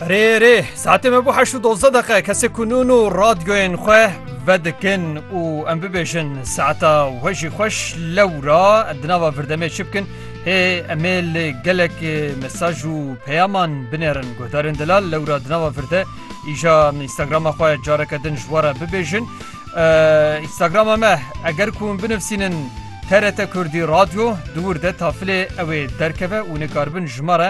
Rê rê saetê me bû heşt û dozda deqe kesê kunûn û radyoyên xwe vedikin û em bibêjin saeta we jî xweş lewra di nava virdemê çi bikin hê emê li gelek mesaj û peyaman binêrin guhdarên delal lewra di nava virde îja Instagrama xwe careke din ji wara bibêjin Instagrama me eger ku hûn binivsînin TRT Kurdî radyo di wir de tafilê ew ê derkeve û nikarbin ji me re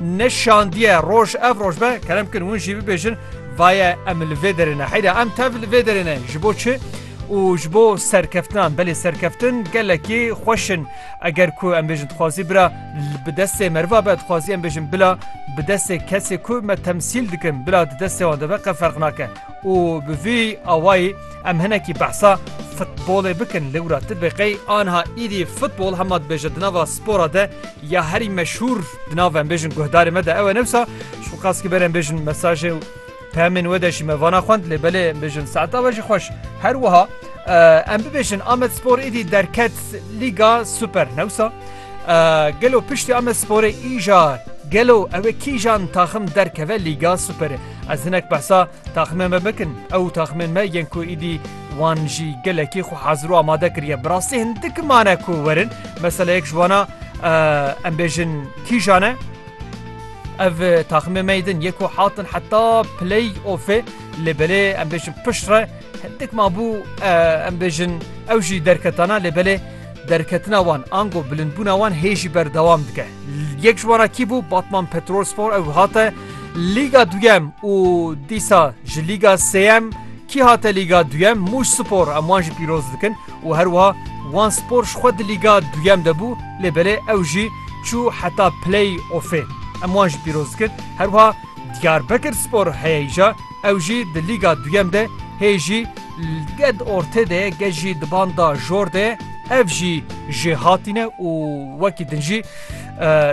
ne şandiye roj ev roj be kerem kin hûn jî bibêjin vaye em li vê derê ne heyra em tev li vê derê ne ji bo çi û ji bo serkeftinan belê serkeftin gelekî xweşin eger ku em bêjin dixwazî bira bi destê meriva be dixwazî em bêjin bila bi destê kesê ku me temsîl dikin bila di destê wan deve qe ferq nake û bi vî awayî Em hinekî behsa futbolê bikin lewra ti bi qey anha îdî futbol hema dibêje di nava spora de ya herî meşhûr di nav em bêjin guhdarê me de ew e newsa şu qas ki berem bêjin mesajê û pemên we de jî me vana xwend lê belê em bêjin saeta we jî xweş her wiha em bibêjin Amed Spor îdî derket Lîga Super newsa gelo piştî Amed Sporê îja gelo ew kîjan taxim derkeve Lîga Superê ez hinek behsa Taxmên me bikin, ew taxmên me yên ku îdî wan jî gelekî xwe hazir û amade kiriye. Bi rastî hindik mane ku werin meseleyek ji wana em bêjin kîjan e. Ev taxmê me din yê ku hatin heta play ofê lê belê em bêjin pişt re hindik mabû em bêjin ew jî derketana lê belê Derketina wan ango bilindbûna wan hê jî berdewam dike. Yek ji wan kî bû Batman Petrolspor ew hate Lîga duyem û dîsa ji Lîga sêyem kî hate Lîga duyem Mûş Spor em wan jî pîroz dikin û her wiha Wan Spor ji xwe di Lîga duyem de bû lê belê ew jî çû heta play offê em wan jî pîroz dikin her wiha Diyarbekir Spor heye îja Ew jî di Lîga Duyem de hê jî ged ortê de ye, ged jî di banda jor de ye. Ev jî ji hatî ne û wekî din jî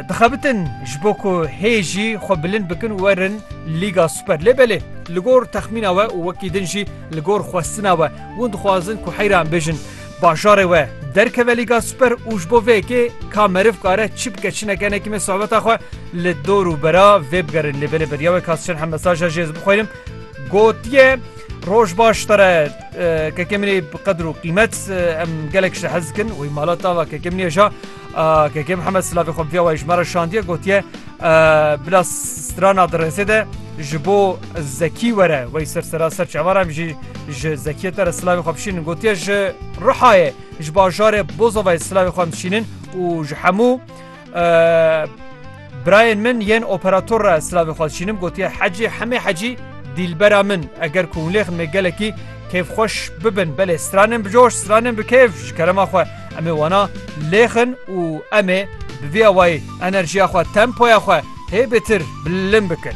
dixebitin ji bo ku hê jî xwe bilind bikin û werin Lîga Super. Lê belê li gor texmîna we û wekî din jî li gor xwestina we, hûn dixwazin ku heyran bêjin. Bajarê we derkeve Lîga Super û ji bo vê yekê ka meriv kare çi bike çi neke ne kîme sohbeta xwe li dor û bera vê bigerin lê belê beryawê ka çend hemesaja jê ez bixwînim gotiye Roj baş tere keke min ê bi qedir û qîmet em gelek ji te hez dikin wî mala tava keke min ê ja Keke Mihemed Silavê xwe bi vîa wayî ji me re şandiye gotiye bila strana di rêzê de ji bo zekî were wey ser sera ser çavar em jî ji zekiyê te re silavê xwe bişînin gotiye ji Rihayê ji bajarê Bozovayê silavê xwe em dişînin û ji hemû Birayên min yên operator re silavê xwe dişînim gotiye hecî hemê hecî dîlbera min eger ku hûn lêxin me gelekî kêfxweş bibin belê stranên bi coş stranên bi kêf ji kerema xwe emê wana lêxin û emê bi vî awayî enerjiya xwe tempoya xwe hê bêtir bilind bikin.